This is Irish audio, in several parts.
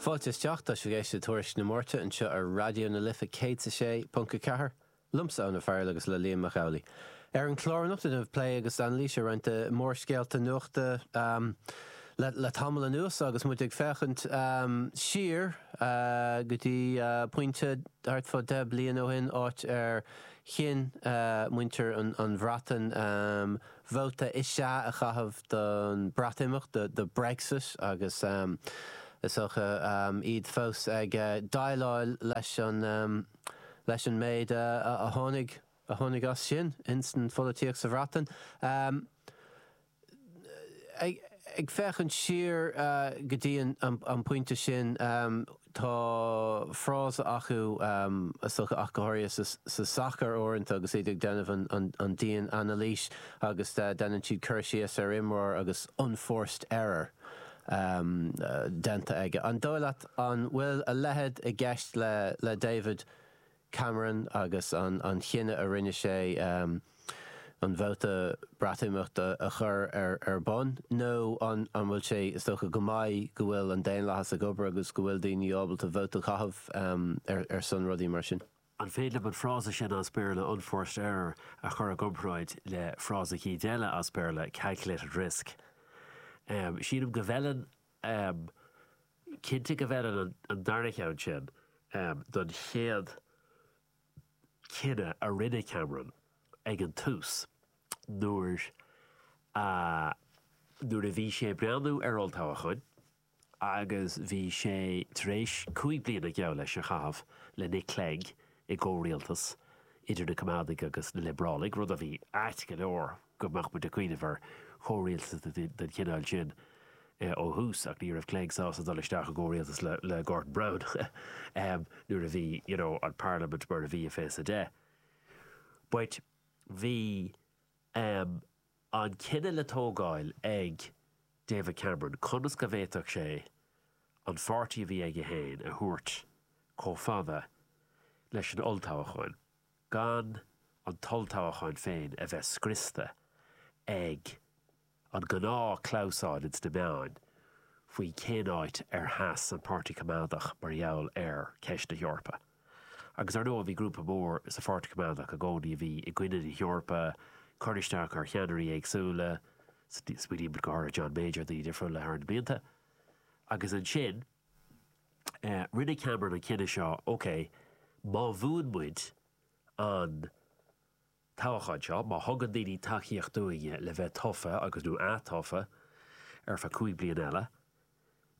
Fáilte isteach, tá sibh ag éisteacht le Tuairisc na Márta anseo ar Raidió na Life 106.4, liomsa Eoin Ó Fearghail agus le Liam Mac Amhlaigh. Ar an chlár anocht tá plé agus anailís ar roinnt mórscéalta nuachta le tamall anuas agus muid ag féachaint siar go dtí pointe thart fá deich bliana ó shin, áit ar chinn muintir an Bhreatain, Vóta is ea a chaitheamh don Bhreatimeacht, do Brexit, agus is dócha iad fós ag déileáil leis an méid a tháinig a tháinig as sin insan pholaitíocht sa Bhreatain. Ag féachaint siar go dtí an pointe sin, Tá frása acu, ach go háirithe sa sacar uaireanta agus iad ag déanamh an dian-anailís agus déanann siad cur síos ar imreoir agus 'unforced error' déanta aige. An dóigh leat an bhfuil a leithéid i gceist le David Cameron agus an chinneadh a rinne sé an vóta Breatimeachta a chur ar bun? Nó an bhfuil sé, is dócha go maith go bhfuil an daonlathas ag obair agus go bhfuil daoine ábalta vóta a chaitheamh ar son rudaí mar sin? An féidir liom an frása sin as Béarla 'unforced error' a chur i gcomparáid le frása cuid eile as Béarla 'calculated risk'? Sílim go bhfeileann Am, cinnte go bhfeileann an darna ceann sin don chéad cinneadh a rinne Cameron ag an tús nuair a nuair a bhí sé ag breathnú ar olltoghchán agus bhí sé tar éis cúig bliana geall leis a chaitheamh le Nick Clegg i gcomhrialtas idir na Coimeádaigh agus na Liobrálaigh, rud a bhí ait go leor. go mbeadh muid ag cuimhneamh ar chomhrialtas den chineál sin ó thús ach ní raibh Clegg sásta dul isteach i gcomhrialtas le Gordon Brown nuair a bhí you know an parlaimint mar a bhí i Fiche a Deich but bhí um an cinneadh le tógáil ag David Cameron conas go bhféadfadh sé an pháirtí a bhí aige féin a thabhairt chomh fada leis an olltoghchán gan an t-olltoghchán féin a bheith scriosta ag an ngnáthchnáimhseáil ins na meáin faoi cén áit ar sheas an Páirtí Coimeádach mar gheall ar cheist na hEorpa. Agus ar ndóigh bhí grúpa mór sa Pháirtí Coimeádach i gcónaí a bhí i gcoinne na hEorpa, ag cur isteach ar cheannairí éagsúla, smaoinímid go háirithe John Major daoine difriúla thar na blianta, agus ansin, Rinne Cameron an cinneadh seo, OK, má bhuann muid an toghachán seo, má thugann daoine tacaíocht dúinne le bheith tofa agus, nó ath-tofa ar feadh cúig bliana eile,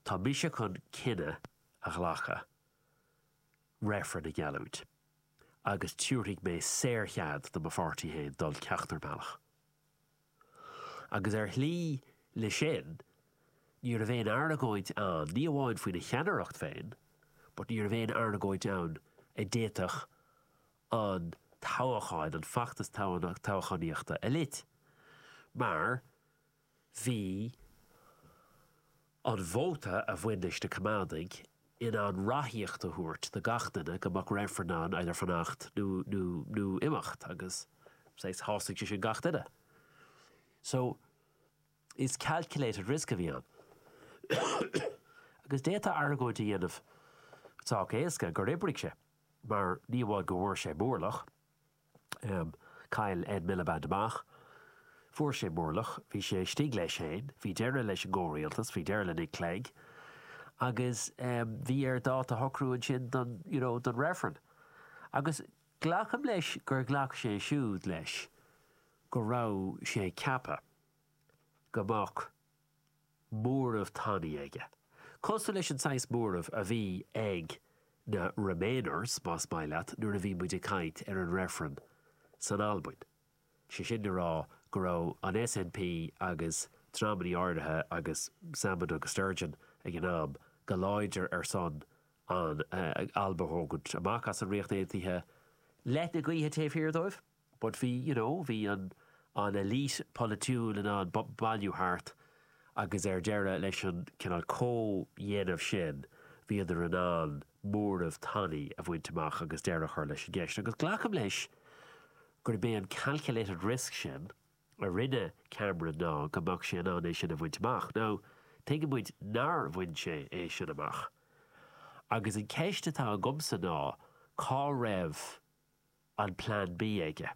tá mise chun cinneadh a ghlacadh reifreann a gheallúint agus tabharfaidh mé saor-chead do mo pháirtí féin dul ceachtar bealach. agus ar shlí leis sin ní raibh aon argóint ann, ní amháin faoina cheannaireacht féin, but ní raibh aon argóint ann a d'fhéadfadh an toghachán, an feachtas toghchánaíochta a lot, mar bhí an vóta a bhain leis na Coimeádaigh, in ann ráthaíocht a thabhairt do gach duine go mbeadh reifreann ann either fanacht nó imeacht agus shásaigh sé sin gach duine. So, is calculated risk a bhí ann. Agus d'fhéadfá argóint a dhéanamh sách éasca gur oibrigh sé, mar ní amháin go bhfuair sé mórlach, Am, Chaill Ed Miliband amach. Fuair sé mórlach. Bhí sé istigh leis féin. Bhí deireadh leis an gcomhrialtas. Bhí deireadh le Nick Clegg. Agus bhí air dáta a shocrú ansin don, you know, don reifreann. Agus glacaim leis gur ghlac sé siúd leis go raibh sé ag ceapadh go mbeadh, móramh tanaí aige. Cosúil leis an saghas móramh a bhí ag na Remainers, más maith leat, nuair a bhí muid ag caint ar an reifreann san Albain, sé sin le rá go raibh an SNP agus dreamannaí áirithe agus Salmond agus Sturgeon ag an am go láidir ar son an Alba a thógaint amach as an Ríocht Aontaithe, leoithne gaoithe taobh thiar dóibh. But bhí, you know, bhí an an elite polaitiúil in ann bailiú thart agus ar deireadh leis an cineál comhdhéanamh sin bhíodar in ann móramh tanaí a bhaint amach agus deireadh a chur leis an gceist. Agus glacaim leis gurb é an calculated risk sin a rinne Cameron ná go mbeadh sé in ann é sin a bhaint amach. Now, tuigeann muid nár bhain sé é sin amach. Agus an ceist atá agamsa ná cá raibh. an Plean B aige?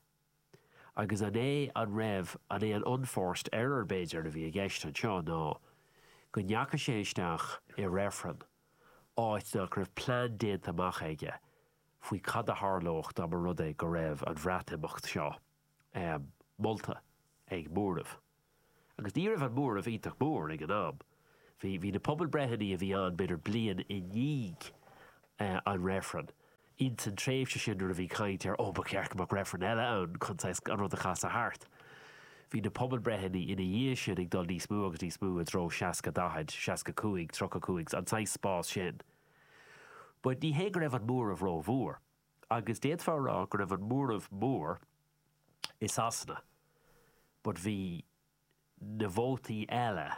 Agus an é an raibh an é an unforced error, b'fhéidir, a bhí i gceist anseo ná go ndeachaigh sé isteach i reifreann áit nach raibh plean déanta amach aige faoi cad a tharlódh dá mba rud é go raibh an Bhreatimeacht seo molta ag móramh Agus ní raibh an móramh iontach mór ag an am. Bhí, bhí na pobalbhreitheanna a bhí ann b'fhéidir bliain i ndiaidh an reifrinn, ins an tréimhse sin nuair a bhí caint ar oh ba cheart go mbeadh reifreann eile ann chun saghas an rud a chasadh thart, bhí na pobalbhreitheanna ina dhiaidh sin ag dul níos mó agus níos mó i dtreo seasca daichead, seasca cúig, tríocha cúig, an saghas spás sin. But ní hé go raibh an móramh ró-mhór. Agus d'fhéadfá a rá go raibh an móramh mór, i Sasana but bhí na vótaí eile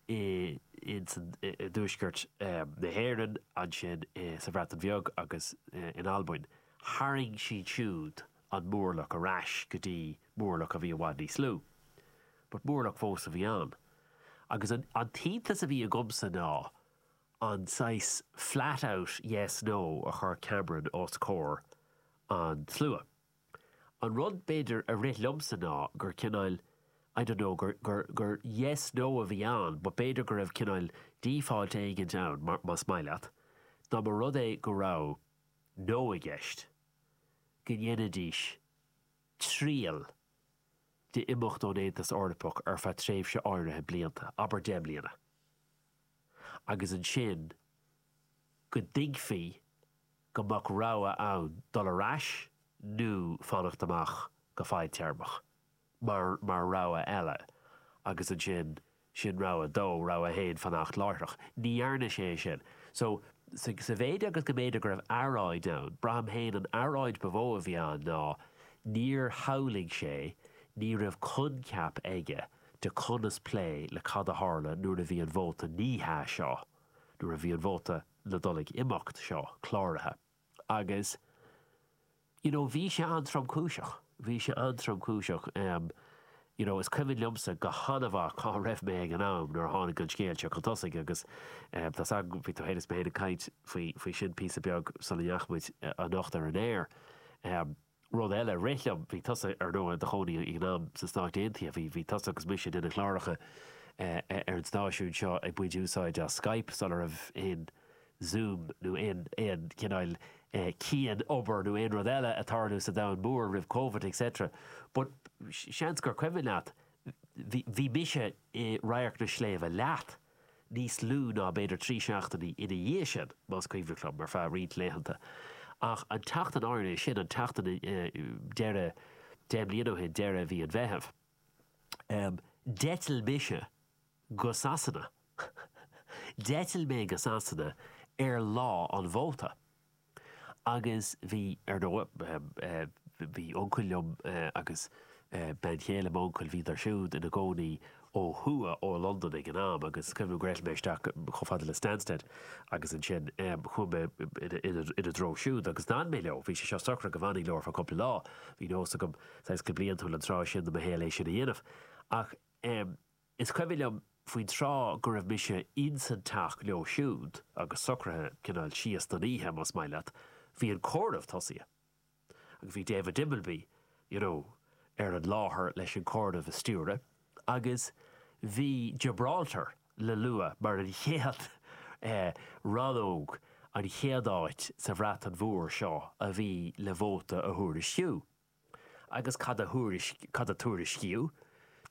i dtuaisceart na hÉireann, ansin sa Bhreatain Bheag agus in Albain, tharraing siad siúd an móramh ar ais go dtí móramh a bhí i bhfad níos lú. But móramh fós a bhí ann. Agus an t-iontas a bhí agamsa ná an saghas flat out yes, no a chuir Cameron os comhair an tslua. An rud, b'fhéidir, a rith liomsa ná gur cineáil, I don't know, gur, gur, gur yes, no a bhí ann but b'fhéidir go raibh cineáil default éigint ann, mar, más maith leat, dá mba rud é go raibh no i gceist, go ndéanfaidís triail d'imeacht ón Aontas Eorpach ar feadh tréimhse áirithe blianta, abair deich mbliana, agus ansin go dtuigfí, go mbeadh rogha ann dul ar ais nó fanacht amach go fadtéarmach, mar mar rogha eile, agus ansin, sin rogha dó, rogha a haon, fanacht láithreach. Ní dhearna sé é sin. So, sa, sa mhéid agus go mb'fhéidir go raibh earráid ann, braithim féin an earráid ba mhó a bhí ann ná níor shamhlaigh sé, ní raibh coincheap aige de conas plé le cad a tharla nuair a bhí an vóta ní hea seo, nuair a bhí an vóta. le dul ag imeacht seo cláraithe agus you know bhí sé an-tromchúiseach, bhí sé an-tromchúiseach em you know is cuimhin liomsa go han-mhaith cá raibh mé ag an am nuair a tháinig an scéal seo chun tosaigh agus em tá a fhios agam bhí tú féin is mé féin ag caint faoi, faoi sin píosa beag sula ndeachaigh muid anocht ar an aer. Em. Rud eile a rith liom, bhí tusa, ar ndóigh, i do chónaí ag an am sna Stáit Aontaithe, bhí, bhí tusa agus mise ag déanamh cláracha ar an stáisiún seo ag baint úsáid as Skype sula raibh aon Zoom nó aon, aon chineál cianobair nó aon rud eile ag tarlú sa domhan mór roimh Covid et cetera but seans gur cuimhin leat, bhí, bhí mise i Radharc na Sléibhte leat. níos lú ná b'fhéidir trí seachtainí ina dhiaidh sin, más cuimhin ceart liom, ar feadh roinnt laethanta. Ach an tseachtain áirithe sin, an tseachtain deireadh deich mbliana ó shin, deireadh mhí an Mheithimh, d'eitil mise go Sasana. D'eitil mé go Sasana ar lá an vóta. Agus bhí, ar ndóigh. Bhí uncail liom agus bean chéile m'uncail, bhíodar siúd ina gcónaí ó thuaidh ó Londain ag an am agus cuimhin liom go raibh mé isteach chomh fada le Stansted agus ansin chuaigh mé ina dtreo siúd agus d'fhan mé leo. Bhí sé seo socraithe go bhfanfainn leo ar feadh cúpla lá. Bhí nós agam, saghas go bliantúil an tráth sin de mo shaol é sin a dhéanamh. Ach. Is cuimhin liom faoin tráth go raibh mise ins an teach leo siúd agus socraithe cineál síos don oíche, más maith leat, bhí an comhaireamh tosaithe agus bhí David Dimbleby, you know, ar an láthair leis an comhaireamh a stiúradh agus bhí Gibraltar le lua mar an chéad eh, rannóg, an chéad áit sa Bhreatain Mhór so a bhí le vóta a thuairisciú. Agus cad a tuairiscíodh?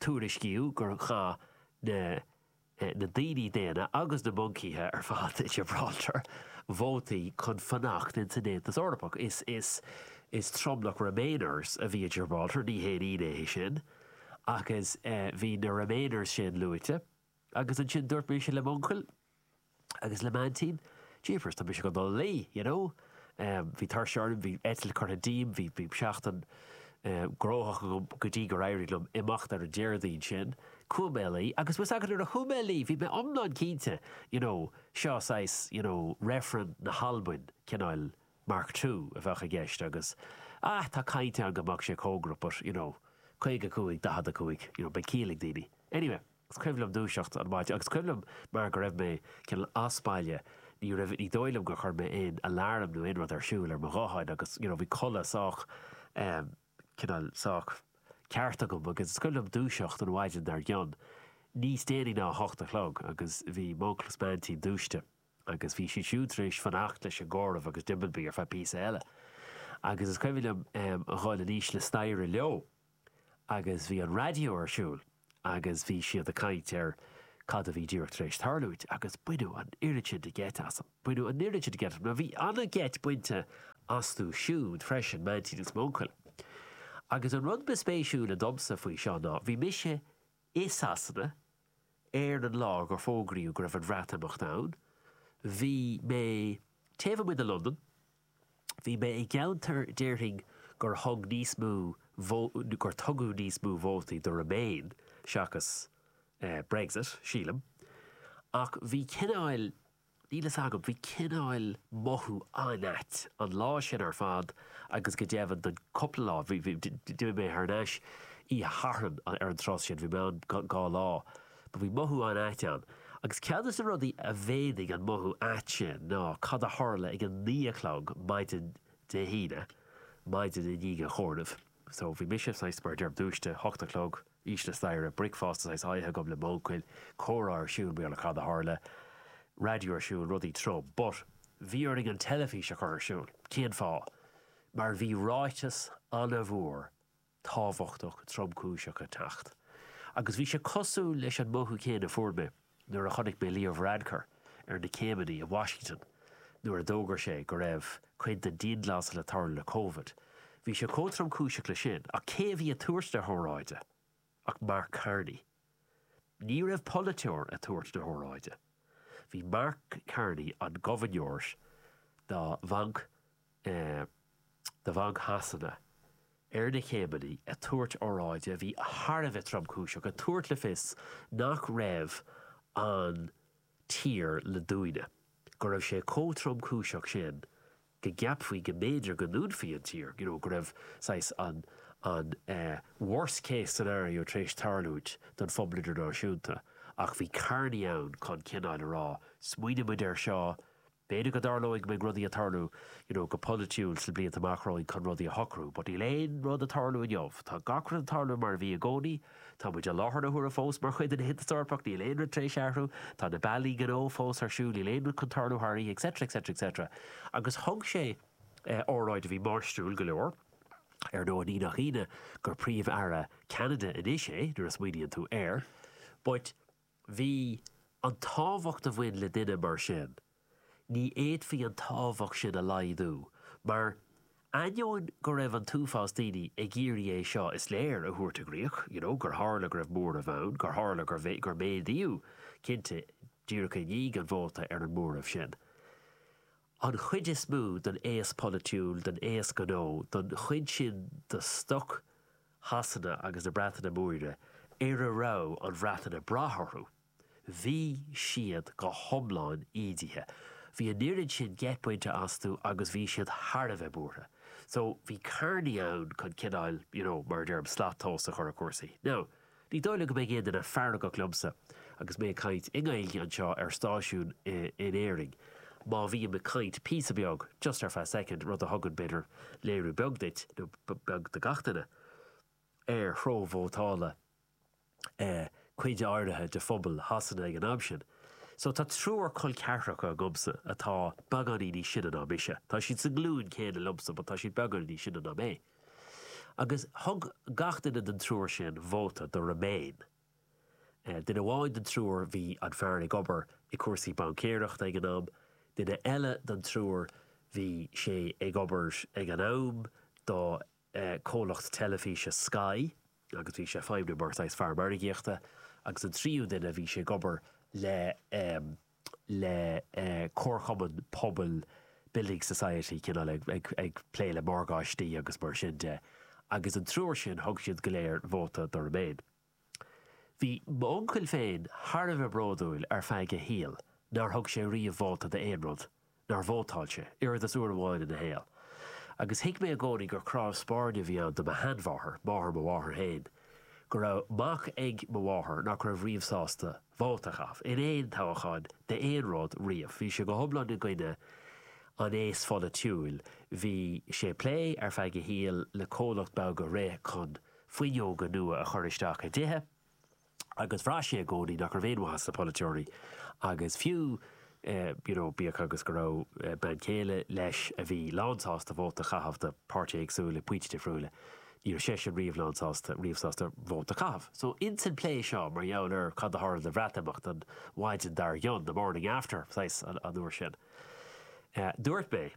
Tuairiscíodh gur chaith na daoine daonna agus na moncaithe ar fad i Gibraltar vótaí chun fanacht ins an Aontas Eorpach. Is tromlach Remainers a bhí i Gibraltar, ní haon ionadh é sin. Ach bhí na Remainers sin luaite. Agus ansin dúirt mise le m'uncail agus le m'aintín, Jeepers, tá mise go dul a luí, you know. Bhí tuirse orm, bhí eitilt curtha díom, bhí seachtain gnóthach go dtí gur éirigh liom imeacht ar an Déardaoin sin. Chuaigh mé a luí agus bhfuil 's agat nuair a chuaigh mé a luí bhí mé iomlán cinnte, you know, so saghas, you know, reifreann na hAlbain cineál mark two a bheadh i gceist agus ah tá caint ann go mbeadh sé cóngarach but you know 55, 45 you know beidh ciall ag daoine. Anyway, is cuimhin liom dúiseacht an mhaidin agus cuimhin liom mar go raibh mé cineál as baile ní raibh ní dóigh liom gur chuir mé aon alarm nó aon rud ar siúl ar mo ghuthán agus you know bhí codladh sách ehm cineál sách ceart agam agus is cuimhin liom dúiseacht an mhaidin dar gcionn níos déanaí ná a hocht a chlog agus bhí m'uncail is m'aintín dúiste. Agus bhí siad siúd tar éis fanacht leis an gcomhaireamh agus Dimbleby ar feadh píosa eile. Agus is cuimhin liom a dhul in íochtar staighre leo agus bhí an raidió ar siúl agus bhí siad ag caint ar cad a bhí díreach tar éis tarlúint agus baineadh an oiread sin de gheit asam. Baineadh an oiread sin de gheit asam. Now bhí an-gheit bainte astu siúd freisin, m'aintín agus m'uncail. Agus an rud ba spéisiúla domsa faoi seo ná, bhí mise i Sasana Ar an lá gur fógraíodh go raibh an Bhreatimeacht ann, bhí mé taobh amuigh de Londain. Bhí mé i gceantar déarfainn gur thug níos mó gur tugadh níos mó vótaí do Remain seachas Brexit, sílim, ach bhí cineáil, Níl fhios agam, bhí cineáil mothú an-ait an lá sin ar fad agus go deimhin don cúpla lá, bhí, bhí, d'imigh mé thar n-ais oíche Shathairn ar an turas sin, bhí mé ann dhá lá, but bhí mothú an-ait ann. Agus ceann de na rudaí a mhéadaigh an mothú ait sin ná cad a tharla ag a naoi a chlog maidin Dé hAoine, maidin i ndiaidh an chomhairimh. So bhí mise, saghas, mar a deirim, dúisithe, ocht a chlog, síos an staighre, bricfeasta saghas ite agam le m'uncail, comhrá ar siúl i mBéarla, cad a tharla? raidió ar siúl, rudaí trom. But bhí orainn an teilifís a chur ar siúl. Cén fáth? Mar bhí ráiteas an-mhór tábhachtach tromchúiseach ag teacht. Agus bhí sé cosúil leis an mothú céanna a fuair mé. nuair a chonaic mé Leo Varadkar ar na céimeanna i Washington nuair a d'fhógair sé go raibh cineál dianghlasáil ag tarlú le Covid, bhí sé chomh tromchúiseach leis sin, ach cé a bhí ag tabhairt na hóráide ach Mark Carney. Ní raibh polaiteoir ag tabhairt na hóráide, bhí Mark Carney, an gobharnóir do Bhanc de Bhanc Shasana ar na céimeanna ag tabhairt óráide a bhí thar a bheith tromchúiseach, ag tabhairt le fios nach raibh an tír le dúnadh, go raibh sé chomh tromchúiseach sin go gceapfaí go mb'fhéidir go ndúnfaí an tír, you know, go raibh saghas an an worst case scenario tar éis tarlúint don phobal idirnáisiúnta, ach bhí Carney ann chun cineáil a rá, smaoinigh muid air seo, B'fhéidir go dtarlóidh go mbeidh rudaí ag tarlú you know go polaitiúil sna blianta amach romhainn chun rudaí a shocrú but níl aon rud ag tarlú inniu. Tá gach rud ag tarlú mar a bhí i gcónaí. Tá muid i láthair na huaire fós mar chuid den Aontas Eorpach, níl aon rud tar éis athrú. Tá na bealaí gnó fós ar siúl, níl aon rud chun tarlú thar oíche etc etc etc. Agus thug sé óráid a bhí máistriúil go leor. Ar ndóigh, ní nach ionadh gur Príomh-Aire Cheanada anois é nuair a smaoiníonn tú air. But. bhí, an tábhacht a bhain le duine mar sin, ní fhéadfaí an tábhacht sin a laghdú, mar, ainneoin go raibh an t-uafás daoine ag iarraidh é seo, is léir, a thabhairt i gcrích, you know, gur tharla go raibh móramh ann, gur tharla gur, gur méadaíodh, cinnte, díreach i ndiaidh an vóta, ar an móramh sin. An chuid is mó den aos polaitiúil, den aos gnó, den chuid sin de stoc, Shasana agus na Breataine Móire ar a raibh an Bhreatain ag brath orthu, bhí siad go hiomlán ídithe. Bhí an oiread sin geit bainte astu agus bhí siad thar a bheith buartha. So, bhí Carney ann chun cineáil, you know, mar a deirim, slat tomhais a chur ar chúrsaí. Now, Ní dóigh liom go mbeidh aon duine feargach liomsa agus mé ag caint i nGaeilge anseo ar stáisiún in Éirinn, má bhím ag caint píosa beag, just ar feadh soicind, rud a thugann, b'fhéidir, léiriú beag duit, nó beag do gach duine, ar threo vótála cuid áirithe de phobal Shasana ag an am sin. So, tá triúr col ceathracha agamsa atá beagáinín níos sine ná mise. Tá siad sa nglúin chéanna liomsa but tá siad beagáinín níos sine ná mé. Agus thug gach duine den triúr sin vóta do Remain. Duine amháin den triúr, bhí an fear ag obair i cúrsaí baincéireachta ag an am, duine eile den triúr, bhí sé ag obair ag an am do comhlacht teilifíse Sky. agus bhí sé ag feidhmniú mar saghas fear margaíochta, agus an tríú duine, bhí sé ag obair le le comharchumann pobail, building society, cineál ag ag plé le morgáistí agus mar sin de, agus an triúr sin, thug siad go léir vóta do Remain. Bhí m'uncail féin thar a bheith bródúil ar feadh a shaoil nár thug sé riamh vóta d'aon rud, nár vótáil sé, oiread is uair amháin ina shaol. Agus thuig mé i gcónaí gur cnámh spairne a bhí ann do mo sheanmháthair, máthair mo mháthar féin, go raibh mac ag mo mháthair nach raibh riamh sásta vóta a chaitheamh, in aon toghchán d'aon rud, riamh. Bhí sé go hiomlán i gcoinne an aos pholaitiúil. Bhí sé ag plé, ar feadh a shaoil, le comhlacht beag a rith chun fuinneoga nua a chur isteach i dtithe. agus bhraith sé i gcónaí nach raibh aon mhaith sna polaiteoirí agus fiú you know bíodh agus go raibh bean chéile leis a bhí lánsásta vóta a chaitheamh do pháirtithe éagsúla ag pointí difriúla ní raibh seisean riamh lánsásta riamh sásta vóta a chaitheamh. So ins an plé seo mar gheall ar cad a tharla de Bhreatimeacht an mhaidin dar gcionn, the morning after, saghas, an uair sin dúirt mé,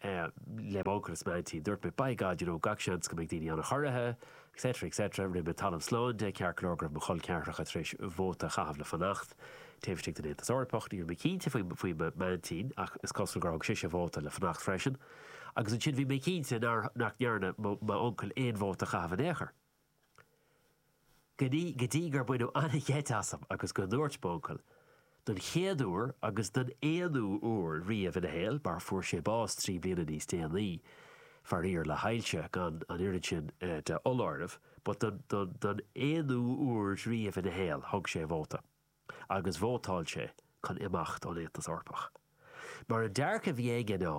le m'uncail is m'aintín. Dúirt mé, By God, you know, gach seans go mbeidh daoine an-chorraithe, etc. etc. Rinne mé talamh slán de, ceart go leor, go raibh mo chol ceathracha tar éis vóta a chaitheamh le fanacht taobh istigh den Aontas Eorpach. Ní raibh mé cinnte faoi m'aintín, ach is cosúil gur thug sise vóta le fanacht freisin. Agus ansin bhí mé cinnte nach ndearna m'uncail aon vóta a chaitheamh in aon chor. go dtí gur baineadh an-gheit asam agus go ndúirt m'uncail, don chéad uair agus don aonú uair riamh ina shaol, mar fuair sé bás trí bliana níos déanaí, faraor, le hailse, gan an oiread sin de fholáireamh, but don aonú uair riamh ina shaol, thug sé vóta. agus vótáil sé chun imeacht ón Aontas Eorpach. Mar an dearcadh a bhí aige ná,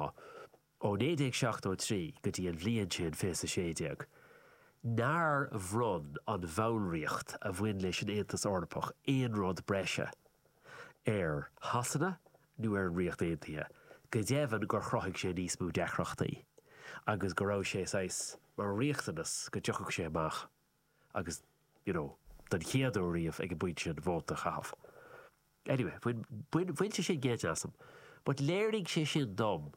ó 1973 go dtí an bhliain sin, 2016, nár bhronn an bhallraíocht a bhain leis an Aontas Eorpach aon rud breise ar Shasana nó ar an Ríocht Aontaithe, go deimhin gur chruthaigh sé níos mó deacrachtaí agus go raibh sé, saghas, mar riachtanas go dtiocfadh sé amach. agus, you know, den chéad uair riamh ag an bpointe sin, vóta a chaitheamh. Anyway, bhain, bhain sé sin geit asam, but léirigh sé sin dom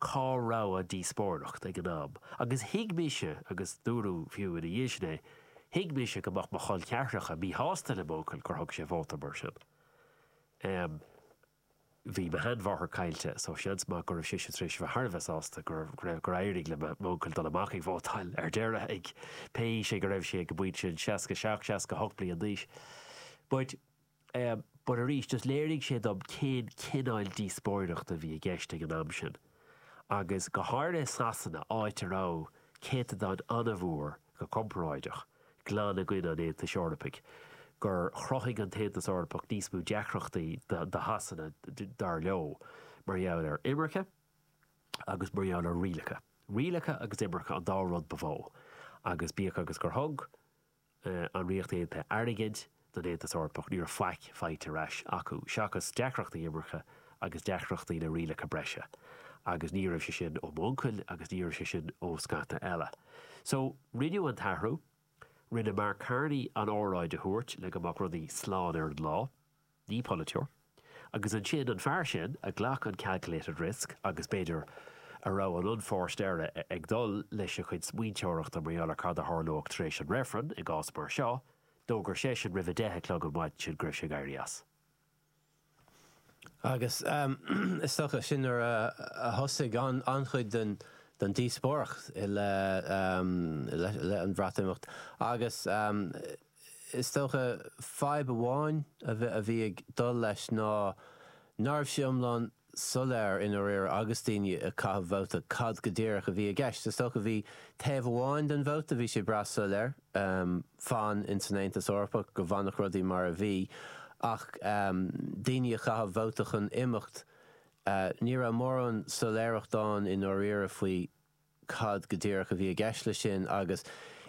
cá raibh an díospóireacht ag an am agus thuig mise, agus dúradh fiú ina dhiaidh sin é, thuig mise go mbeadh mo chol ceathracha míshásta le m'uncail gur thug sé vóta mar sin. Em. Bhí mo sheanmháthair caillte, so seans maith go raibh sise tar éis bheith thar a bheith sásta go raibh, gur éirigh le m'uncail dul amach ag vótáil ar deireadh, ag, pé aois é go raibh sé ag an bpointe sin, 67, 68 bliain d'aois. But eh, but arís, just léirigh sé dom cén cineál díospóireachta a bhí i gceist ag an am sin. agus go háirithe i Sasana, áit a raibh céatadán an-mhór, go comparáideach, glan i gcoinne an Aontais Eorpaigh, gur chruthaigh an tAontas Eorpach níos mó deacrachtaí do Shasana, dar leo, mar gheall ar imirce agus mar gheall ar rialacha. Rialacha agus imirce an dá rud ba mhó, agus bíodh agus gur thug, an Ríocht Aontaithe airgead don Aontas Eorpach, ní raibh faic faighte ar ais acu, seachas deacrachtaí imirce agus deacrachtaí le rialacha breise. Agus ní raibh sé sin ó m'uncail agus ní raibh sé sin ó scata eile. So, rinneadh an t-athrú. Rinne Mark Carney an óráid a thabhairt le go mbeadh rudaí slán ar an lá. ní polaiteoir. Agus ansin, an fear sin a ghlac an calculated risk agus, b'fhéidir, a raibh an an-phóirt air ag dul leis a chuid smaointeoireachta mar gheall ar cad a tharlódh tar éis an reifrinn i gcás mar seo, d'fhógair seisean roimh a deich a chlog an mhaidin sin go raibh sé ag éirí as. Agus is dócha, sin nuair a thosaigh an-chuid den díospóireacht i leith, leith an Bhreatimeacht agus, Is dócha, fadhb amháin a bhí ag dul leis ná nárbh sé iomlán soiléir i ndáiríre agus daoine ag caitheamh vóta cad go díreach a bhí i gceist. Is dócha bhí taobh amháin den vóta, bhí sé breá soiléir, fan ins an Aontas Eorpach, go bhfanfadh rudaí mar a bhí, ach daoine ag caitheamh vóta chun imeacht, ní raibh mórán soiléireacht ann i ndáiríre faoi. cad go díreach a bhí i gceist leis sin agus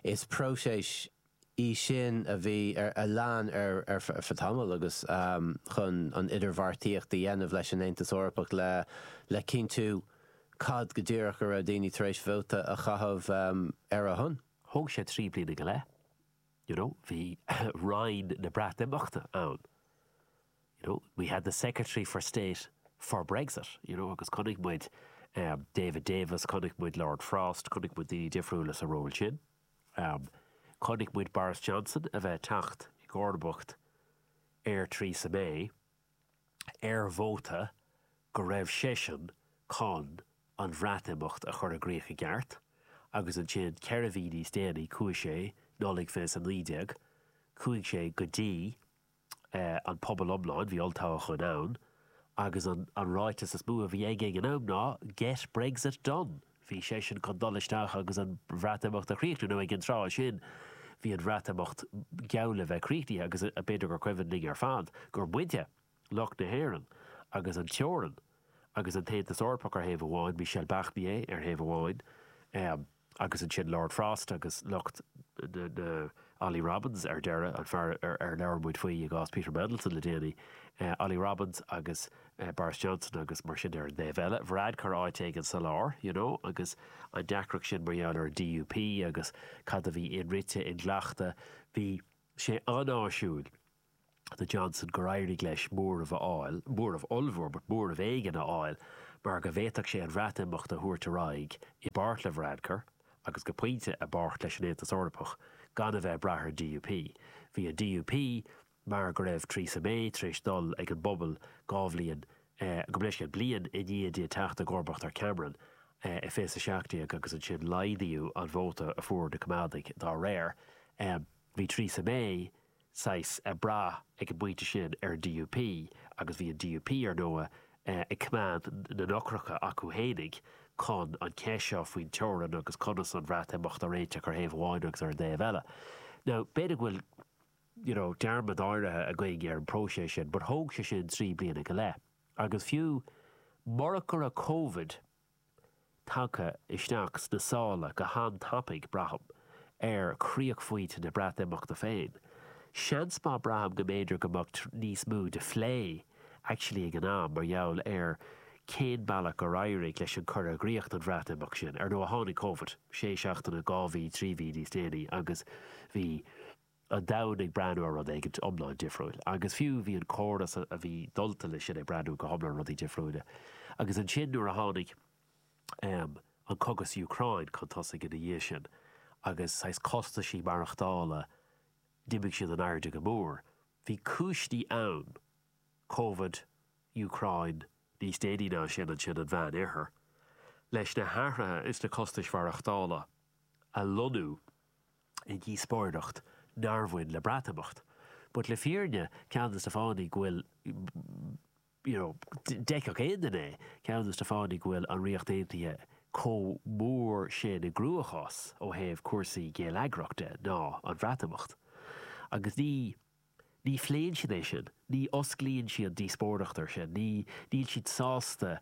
is próiseas í sin a bhí ar, a lean ar feadh tamaill agus chun an idirbheartaíocht a dhéanamh leis an Aontas Eorpach le, le cinntiú cad go díreach a raibh daoine tar éis vóta a chaitheamh ar a shon. Thóg sé trí bliana go leith, you know, bhí Roinn na Breatimeachta ann. you know, we had the Secretary for State for Brexit, you know, agus chonaic muid David Davis, chonaic muid Lord Frost, chonaic muid daoine difriúla sa ról sin. Chonaic muid Boris Johnson a bheith ag teacht i gcomharbacht ar Theresa May ar móta go raibh seisean chun an Bhreatimeacht a chur i gcríoch i gceart agus ansin ceithre mhí níos déanaí chuaigh sé, Nollaig 2019, chuaigh sé go dtí an pobal iomlán, bhí olltoghchán ann, agus an an ráiteas is mó a bhí aige ag an am ná Get Brexit Done! Bhí seisean chun dul isteach agus an Bhreatimeacht a chríochnú, nó ag an tráth sin bhí an Bhreatimeacht geall le bheith críochnaithe agus b'fhéidir gur cuimhin linn ar fad gur muide, lucht na hÉireann, agus an teorainn, agus an tAontas Eorpach ar thaobh amháin, Michel Barnier ar thaobh amháin, Agus ansin Lord Frost agus lucht na, Ollie Robins ar deireadh, an fear ar labhair muid faoi i gcás Peter Mandelson le déanaí, Ollie Robins agus Boris Johnson agus mar sin ar an dtaobh eile, Varadkar áit éigin sa lár, you know, agus an deacracht sin mar gheall ar an DUP agus cad a bhí inrite, inghlactha, bhí sé an-áisiúil. do Johnson gur éirigh leis móramh a fháil, móramh ollmhór, but móramh éigin a fháil, mar go bhféadfadh sé an Bhreatimeacht a thabhairt ar aghaidh, i bpáirt le Varadkar, agus go pointe, i bpáirt leis an Aontas Eorpach, gan a bheith ag brath ar an DUP. Bhí an DUP, mar go raibh Theresa May tar éis dul ag an bpobal dhá bhliain, gabh mo leithscéal, bliain i ndiaidh di teacht i gcomharbacht ar Cameron, i 2017 agus ansin laghdaíodh an vóta a fuair na Coimeádaigh dá réir. Bhí Theresa May. saghas ag brath ag an bpointe sin ar an DUP agus bhí an DUP, ar ndóigh, ag coimeád na n-eochracha acu fhéinig chun an cheist seo faoin teorainn agus conas an Bhreatimeacht a réiteach ar thaobh amháin agus ar an dtaobh eile. Now, b'fhéidir go bhfuil you know dearmad áirithe againn ar an bpróiseas sin but thóg sé sin trí bliana go leith agus fiú murach go raibh Covid tagtha isteach sna sála go han-tapaidh, braithim, ar chríochphointe na Breatimeachta féin. Seans maith, braithim go mb'fhéidir go mbeadh níos mó de phlé actually ag an am mar gheall ar cén bealach gur éirigh leis an cur i gcríoch don Bhreatimeacht sin. Ar ndóigh, tháinig Covid sé seachtaine, dhá mhí, trí mhí níos déanaí agus bhí. an domhain ag breathnú ar rud éigin iomlán difriúil. Agus fiú, bhí an córas a bhí dulta leis sin ag breathnú go hiomlán rudaí difriúile. Agus ansin nuair a tháinig an cogadh sa Úcráin chun tosaigh ina dhiaidh sin, agus saghas costaisí maireachtála, d'imigh siad in airde go mór. Bhí cúiseanna ann, covid, Úcráin, níos déanaí ná sin ansin an Meánoirthear, leis na hathruithe sna costais mhaireachtála a lonnú. i ndíospóireacht nár bhain le Breatimeacht, but le fírinne, ceann de na fáthanna go bhfuil, you know, d'fheicfeadh aon duine é, ceann de na fáthanna go bhfuil an Ríocht Aontaithe chomh mór sin i gcruachás ó thaobh cúrsaí géilleagrach de ná an Breatimeacht. Agus ní. Ní phléann siad é sin, ní osclaíonn siad an díospóireacht air sin, ní, níl siad sásta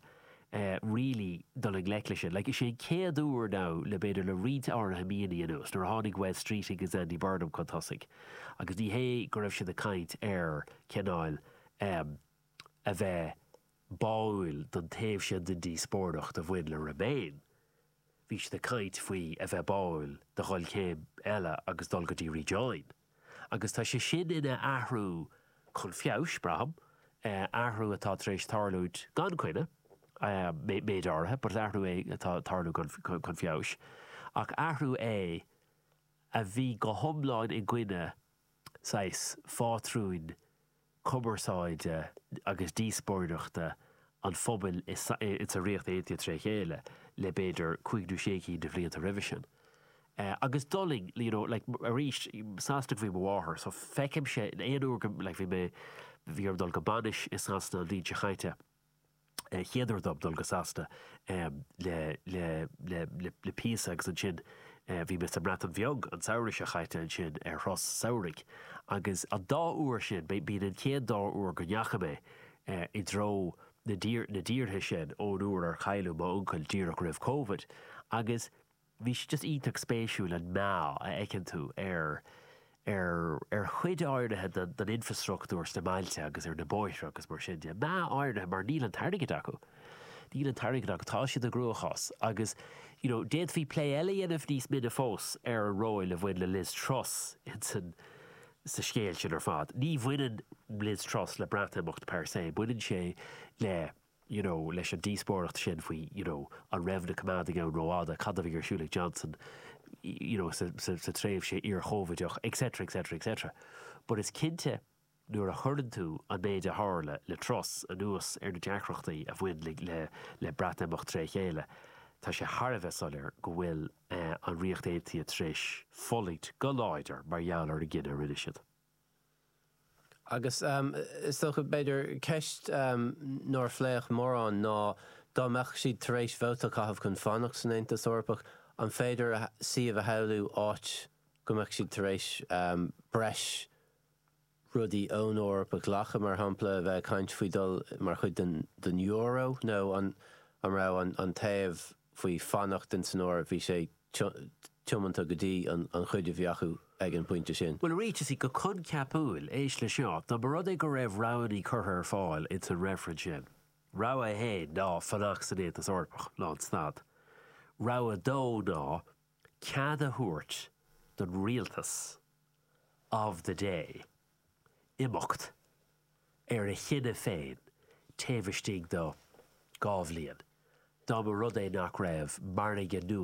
really dul i ngleic leis sin. Like, is é an chéad uair now le b'fhéidir le roinnt áirithe míonna anuas, nuair a tháinig Wes Streeting agus Andy Burnham chun tosaigh agus ní hé go raibh siad ag caint ar cineáil em a bheith báúil don taobh sin den díospóireacht a bhain le remain, Bhí siad ag caint faoi a bheith báúil do dhul céim eile agus dul go dtí rejoin agus tá sé sin ina athrú chun feabhais, braithim, athrú atá tar éis tarlúint gan coinne, méid áirithe, but athrú é atá tarlú chun feabhais, ach athrú é a bhí go hiomlán i gcoinne, saghas, phátrúin cumarsáide agus díospóireachta an phobail i sa Ríocht Aontaithe trí chéile le b'fhéidir cúig nó sé cinn de bhlianta roimhe sin. Agus d'fhulaing, you know like arís as Sasana ab í mo mháthair so feicimse aon uair go like bhí mé bhí orm dul go bainis i Sasana an bhliain seo caite, chéad uair dom dul go Sasana le píosa agus ansin bhí mé sa mBreatain Bheag an samhradh seo caite ansin ar thuras samhraidh agus an dá uair sin, b'in an chéad dá uair go ndeachaigh mé i dtreo na tíortha sin ón uair ar cailleadh m'uncail díreach roimh Covid agus. bhí sé just iontach spéisiúil an meath a fheiceann tú ar ar ar chuid áirithe den den infreastruchtúr sna bailte agus ar na bóithre agus mar sin de. Meath áirithe mar níl an t-airgead acu. Níl an t-airgead acu. Tá siad i gcruachás agus you know d'fhéadfaí plé eile a dhéanamh níos mine fós ar an ról a bhain le Liz Truss in san sa scéal sin ar fad. Ní bhaineann Liz Truss le Breatimeacht per se, baineann sé le. you know, leis an díospóireacht sin faoi, you know, an raibh na coimeádaigh ann rófhada, cad a bhí ar siúl ag Johnson, you know, sa tréimhse iar-Chóivideach, etc, etc, etc. But is cinnte, nuair a chuireann tú an méid a tharla le Truss anuas ar na deacrachtaí a bhain le Breatimeacht trí chéile, tá sé thar a bheith soiléir go bhfuil an Ríocht Aontaithe tar éis fulaingt go láidir mar gheall ar an gcinneadh a rinne siad. Agus is dócha, b'fhéidir, ceist nár pléadh mórán ná, dá mbeadh siad tar éis vóta a chaitheamh chun fanacht san Aontas Eorpach, an féidir suíomh a shamhlú áit go mbeadh siad tar éis breis rudaí ón Eoraip a ghlacadh, mar shampla, bheith ag caint faoi dhul mar chuid den euro, nó an raibh an taobh faoi fanacht in san Eoraip, bhí sé tiomanta go dtí an chuid a bhí acu ag an bpointe sin. Bhuel, arís is í go coincheapúil, éist leis seo, dá mba rud é go raibh roghanna curtha ar fáil ins an reifreann sin. Rogha a haon ná fanacht san Aontas Eorpach leanstát. Rogha a dó ná cead a thabhairt don rialtas of the day imeacht ar a chinneadh féin taobh istigh do dhá bhliain. Dá mba rud é nach raibh margadh nua